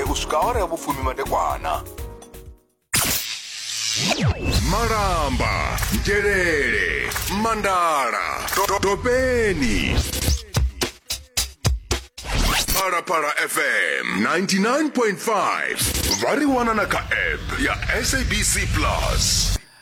u swika awara ya vhufumi madekwana malamba nzhelele mandala to- to- topeni phalaphala fm 99.5 vha ri wana na kha app ya sabc plus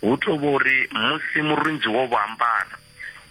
Hu tou vha uri musi murunzi wo vha ambara,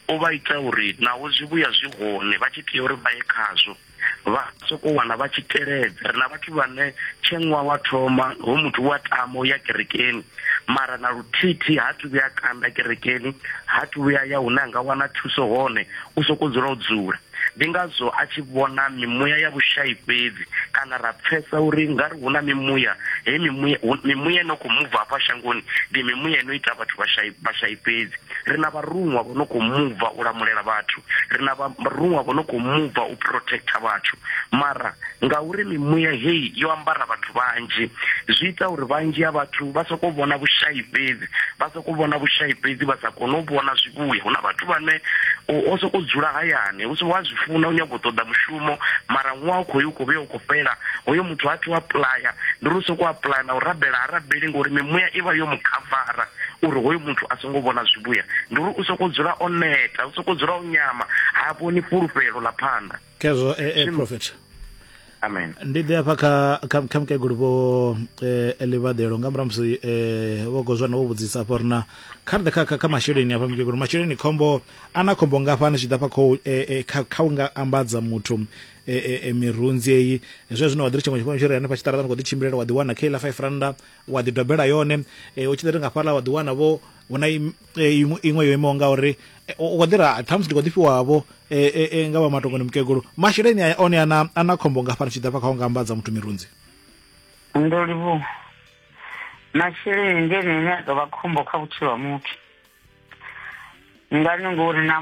o vha ita uri naho zwivhuya zwi hone vha tshi tea uri vha ye khazwo, vha sokou wana vha tshi teledza. Ri na vhathu vhane tshe ṅwaha wa thoma hoyu muthu u a tama u ya kerekeni mara na luthihi-thihi ha athu vhuya a kanda kerekeni, ha athu vhuya a ya hune a nga wana thuso hone, u sokou dzula o dzula. Ndi ngazwo a tshi vhona mimuya ya vhushai fhedzi, kana ra pfesa uri nga ri hu na mimuya, hei mimuya, hu, mimuya ino khou muva hafha shangoni ndi mimuya ino ita vhathu vhashai, vhashai fhedzi. Ri na vharuṅwa vho no khou muva u lamulela vhathu, ri na vharuṅwa vho no khou muva u protector vhathu. Mara ngauri mimuya hei yo ambara vhathu vhanzhi, zwi ita uri vhanzhi ha vhathu vha sokou vhona vhushai fhedzi, vha. u vhona vhushai fhedzi vha sa kone u vhona zwivhuya hu na vhathu vhane o sokou dzula hayani hu si wa zwi funa u nyago u ṱoḓa mushumo mara ṅwaha u khou u khou vhuya u khou fhela hoyo muthu a thi u apuḽaya ndi uri u sokou apuḽaya na u rabela ha rabeli ngori mimuya i vha yo mu khavara uri hoyo muthu a songo vhona zwivhuya ndi uri u sokou dzula o neta u sokou dzula o nyama ha vhoni fhulufhelo ḽa phanḓa khezwo e, e prophet amen ndi ḓe hafha kha kha kha mukegulu vho eh, livhaḓelo nga murahu musi eh, vho gozwana vho vhudzisa hafha uri na kha ri ḓe kha- kha kha masheleni hafha mukegulu masheleni khombo a na khombo ngafhani zwi ḓa fha khou eh, eh, kha kha u nga ambadza muthu eh, eh, eh, mirunzi eyi zwe zwino wa ḓi ri tshiṅwe tshifhinga tshiri hanefha tshiṱaraṱani khou ḓi tshimbilela wa ḓi wana kha iḽa five randa wa ḓi dobela yone eh, u tshi ḓo ri nga fhaḽa wa ḓi wana vho hu na im- eh, iṅwe iṅwe yo imaho nga uri eh, u khou ḓira ṱhamusi ndi khou ḓi fhiwavho eh, nga vha matongoni mukegulu masheleni aya one ana ana khombo nga fana tshi ḓa fha kha u nga ambadza muthu mirunzi ndo livhu masheleni ndi ene ane a ḓo vha khombo kha vhutshilo ha muthu ngani ngori na